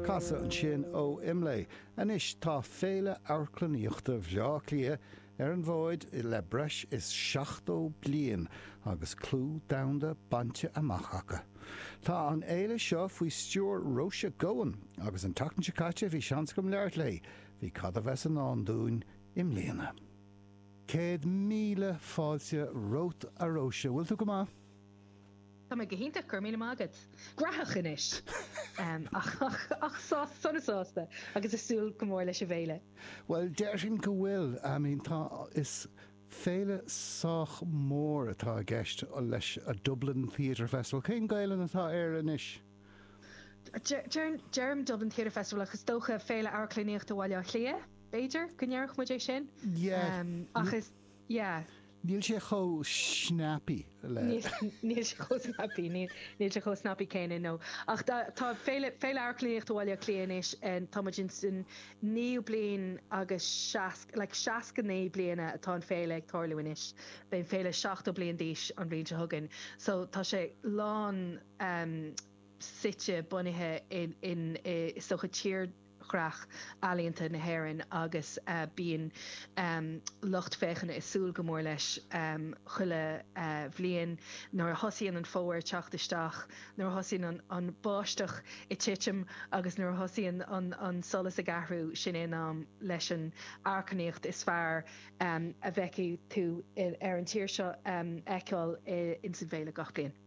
Casadh ansin ó IMLÉ. Anois tá Féile Amharclannaíochta Bhleá Cliath ar an bhfóid le breis is 70 bliain agus clú domhanda bainte amach acu. Tá an fhéile seo faoi stiúir Róise Goan agus an tseachtain seo caite bhí seans agam labhairt léi, faoi cad a bheas i ndán dúinn i mbliana. Céad míle fáilte romhat a Róise, bhfuil tú go maith? Tá mé go hiontach, go raibh míle maith agat. Gnóthach anois ach sona sásta agus ag súil go mór leis an bhféile. Bhuel, déarfainn go bhfuil. I mean, tá, is féile sách mór atá i gceist leis a' Dublin Theatre Festival. Cén Gaelainn atá air anois? Deirim Dublin Theatre Festival ach is dócha Féile Amharclannaíochta Bhaile Átha Cliath, b'fhéidir, go ndéarfadh muid é sin? Yeah. Ach is. Yeah. Níl sé chomh snappy le. Níl sé chomh snappy, níl sé chomh snappy céanna, no. Ach tá Féile, Féile Amharclannaíochta Bhaile Átha Cliath anois, tá muid in san naoú bliain agus seasc, like seasca naoi bliana atá an fhéile ag tarlú anois. Beidh an fhéile seachtó bliain d'aois an bhliain seo chugainn. So tá sé lánsuite, bunaithe in, in, i, is dócha, tír dhreach ealaíonta na hÉireann agus bíonn lucht féachana ag súil go mór leis chuile bhliain. Nuair a thosaíonn an fómhar ag teacht isteach, nuair a thosaíonn an bháisteach ag titim agus nuair a thosaíonn an solas ag athrú, sin é an am leis an amharclannaíocht is fearr a bhfeicfidh tú ar an tír seo a fheiceáil insan bhféile gach bliain.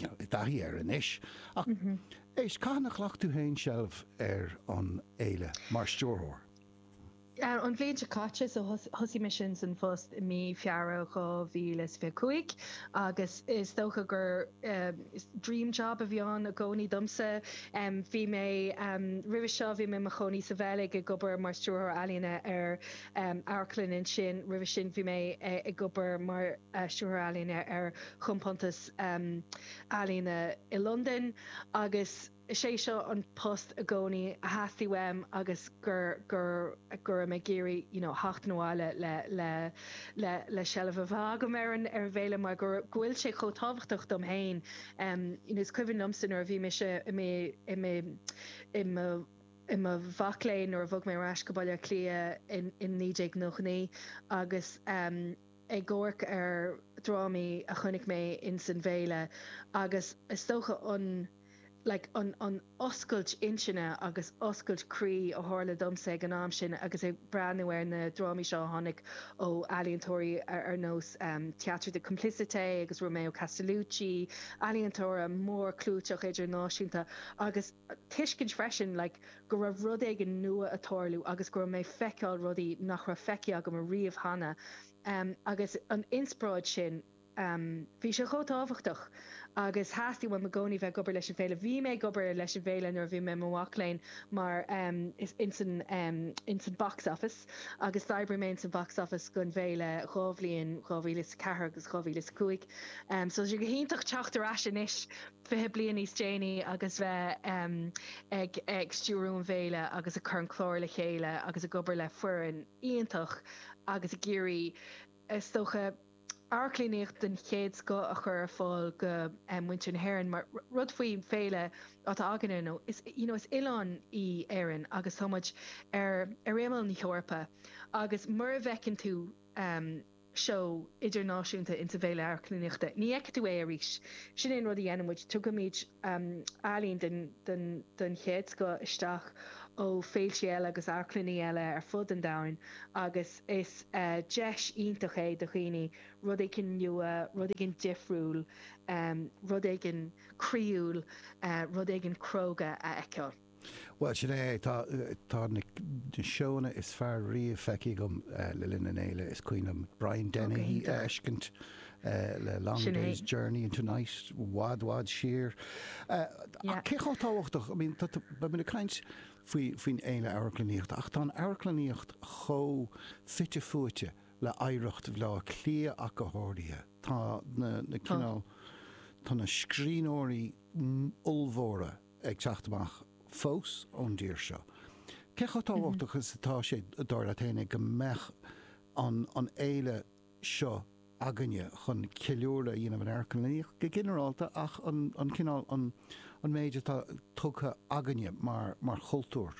I dtaithí air anois ach éist, cathain a ghlac tú féin seilbh ar an fhéile mar stiúrthóir? An bhliain seo caite, so thosaigh mé insan phost i mí Feabhra 2025 agus is dócha gur dream job a bhí ann i gcónaí domsa. Bhí mé, roimhe seo bhí mé i mo chónaí sa Bheilg ag obair mar stiúrthóir ealaíne ar amharclann ansin. Roimhe sin bhí mé ag obair mar stiúrthóir ealaíne ar chompántas ealaíne i Londain agus is é seo an post i gcónaí a theastaigh uaim agus go raibh mé ag iarraidh you know theacht abhaile le seilbh a bheith agam ar an bhféile mar go bhfuil sé chomh tábhachtach dom féin. Is cuimhin liomsa nuair a bhí mise i mo mhac léinn nuair a bhog mé ar ais go Baile Átha Cliath in 1999 agus ag amharc ar dhrámaí a chonaic mé ins an bhféile agus is dócha an like an an oscailt intinne agus oscailt croí a tharla domsa ag an am sin agus ag breathnú ar na drámaí seo a tháinig ó ealaíontóirí ar nós Théâtre de Complicité agus Romeo Castellucci, ealaíontóirí mórchlúiteach idirnáisiúnta agus. tuiscint freisin like go raibh rud éigin nua ag tarlú agus go raibh mé ag feiceáil rudaí nach raibh feicthe agam ariamh cheana ehm agus an inspioráid sin ehm bhí sé chomh tábhachtach agus theastaigh uaim i gcónaí bheith ag obair leis an bhféile. Bhí mé ag obair leis an bhféile nuair a bhí mé i mo mhac léinn mar ehm ins an ehm ins an box office agus d'oibrigh mé ins an box office don bhféile dhá bhliain 2004 agus 2005 ehm so tá sé go hiontach teacht ar ais anois 20 bliain níos déanaí agus bheith ag stiúradh an bhféile agus ag cur an clár le chéile agus ag obair le foireann iontach agus ag iarraidh is dócha amharclannaíocht den chéad scoth a chur ar fáil do mhuintir na hÉireann mar rud faoin bhféile atá againne nó is you know is oileán í Éireann agus tá muid ar ar imeall na hEorpa agus mura bhfeiceann tú ehm, seó idirnáisiúnta insa bhféile amharclannaíochta. Ní fheicfidh tú é arís. Sin é an rud a dhéanann muid, tugaimid ealaíon den chéad scoth isteach ó féiltí eile agus amharclannaí eile ar fud an domhain agus is deis iontach é do dhaoine rud éigin nua, rud éigin difriúil, rud éigin croíúil, rud éigin cróga a fheiceáil. Bhuel, sin é é. Tá na seónna is fearr riamh feicthe agam le linn an fhéile. Is cuimhin liom Brian Dennehy a fheiscint le Long Day's Journey into Night i bhfad bhfad siar. Ach cé chomh tábhachtach, I mean, beimid ag caint faoin fhéile amharclannaíochta ach tá an amharclannaíocht chomh fite fuaite le hoidhreacht Bhaile Átha Cliath ach go háirithe. Tá na cineál, tá na scríbhneoirí ollmhóra ag teacht amach fós ón dtír seo. Cé chomh tábhachtach is atá sé, dar leat fhéin, go mbeadh an fhéile seo againne chun ceiliúradh a dhéanamh ar amharclannaíocht go ginearálta ach an cineál, an méid atá tugtha againne mar chultúr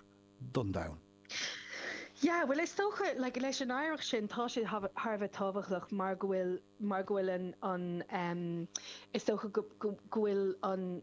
don domhan? Yeah, bhuel is dócha, like, leis an oidhreacht sin tá sé thar a bheith tábhachtach mar go bhfuil, mar go bhfuil an, is dócha go bhfuil an,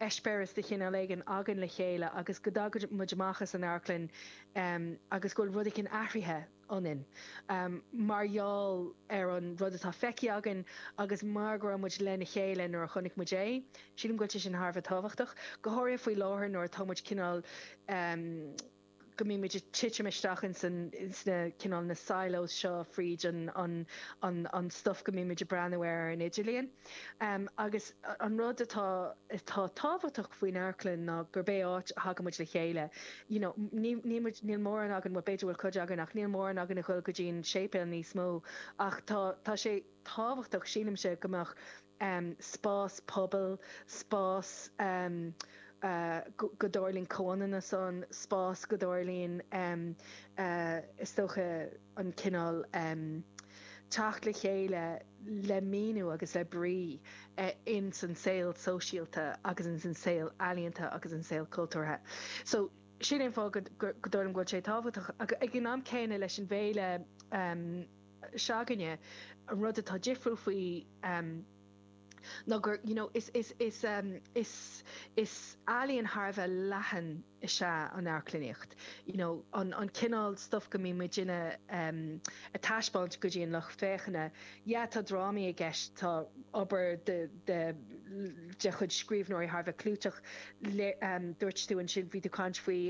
eispéireas de chineál éigin againn le chéile agus go dtagann muid amach as an amharclann agus go bhfuil rud éigin athraithe ionainn mar gheall ar an rud atá feicthe againn agus mar go raibh muid lena chéile nuair a chonaic muid é. Sílim go bhfuil sé sin thar a bheith tábhachtach, go háirithe faoi láthair nuair atá muid cineál. go mbíonn muid ag titim isteach ins an, ins na, cineál na silos seo fríd an, an, an, an stuif go mbíonn muid ag breathnú air ar an idirlíon. Agus an rud atá, atá tábhachtach faoin amharclann ná gurb é áit a thagann muid le chéile. You know, ní, níl muid, níl mórán againn, bhuel b'fhéidir go bhfuil cuid againn ach níl mórán againn a ghoil go dtí an séipéal níos mó ach tá, tá sé tábhachtach, sílimse, go mbeadh, um spás pobail, spás um go dtarlaíonn comhionannas ann, spás go dtarlaíonn um is dócha an cineál um teacht le chéile le míniú agus le brí in san saol sóisialta agus in san saol ealaíonta agus insan saol cultúrtha. So sin é an fáth go dtarlaíonn go bhfuil sé tábhachtach ag an am céanna leis an bhféile um se'againne. An rud atá difriúil faoi ná gur, you know, is, is, is, is, is ealaíon thar a bheith leathan is ea an amharclannaíocht, you know, an, an cineál stuif go mbíonn muid ag, ag taispeáint go dtí an lucht féachana. Yeah, tá drámaí i gceist, tá obair de, de, de chuid scríbhneoirí thar a bheith clúiteach le, dúirt tú ansin, bhí tú caint faoi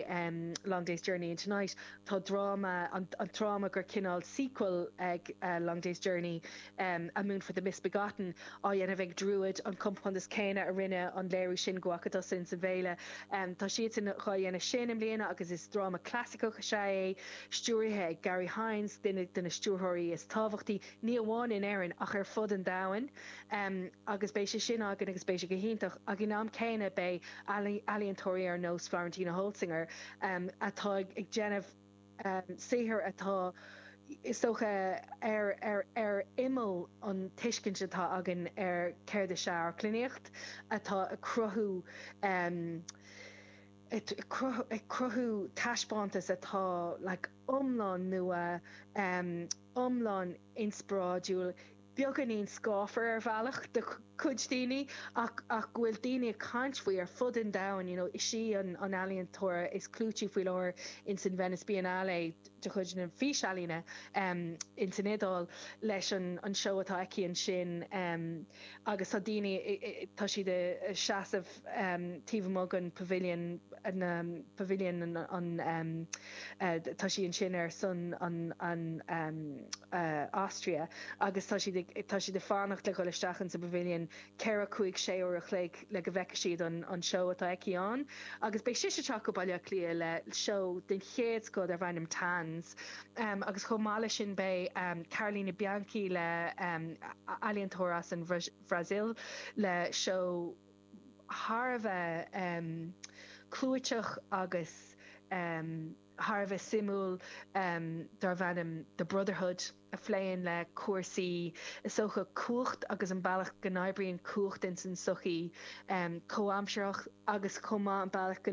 Long Day's Journey into Night, Tá dráma, an dráma gur cineál sequel ag Long Day's Journey, A Moon for the Misbegotten, á dhéanamh ag Druid, an compántas céanna a rinne an léiriú sin go bhfaca tusa sa bhféile. Tá siadsan dhá dhéanamh sin i mbliana agus is dráma clasaiceach is ea é, stiúraithe ag Garry Hynes, duine de na stiúrthóirí is tábhachtaí. ní amháin in Éirinn ach ar fud an domhain agus beidh sé sin againn agus beidh sé go hiontach ach in am céanna beidh ealaíontóirí ar nós Florentina Holzinger atá ag déanamh saothar atá is dócha ar ar ar imeall an tuiscint atá againn ar céard is ea amharclannaíocht atá ag cruthú ag cruthú taispeántas atá like iomlán nua. iomlán inspioráidiúil, beagáinín scáfar ar bhealach do chuid daoine ach go bhfuil daoine ag caint faoi ar fud an domhain, you know is í an ealaíontóir is clúití faoi láthair ins an Venice Biennale de chuid na físealaíona ins an Iodáil leis an seó atá aici ansin agus tá daoine, tá siad a' seasamh. taobh amuigh den Pavilion, na Pavilion an tá sí ansin ar son an Austria agus tá siad tá siad ag fanacht le dhul isteach in sa Pavilion ceithre cúig sé uair a chloig le go bhfeice siad an an seó atá aici ann agus beidh sise ag teacht go Baile Átha Cliath le seó den chéad scoth darb ainm Tanz agus chomh maith leis sin beidh Carolina Bianchi le ealaíontóir as an Bhrasaíl le seó thar a bheith clúiteach agus thar a bheith suimiúil darb ainm The Brotherhood a phléann le cúrsaí, is dócha, cumhacht agus an bealach go n-oibríonn cumhacht ins an tsochaí comhaimseartha agus chomh maith an bealach go.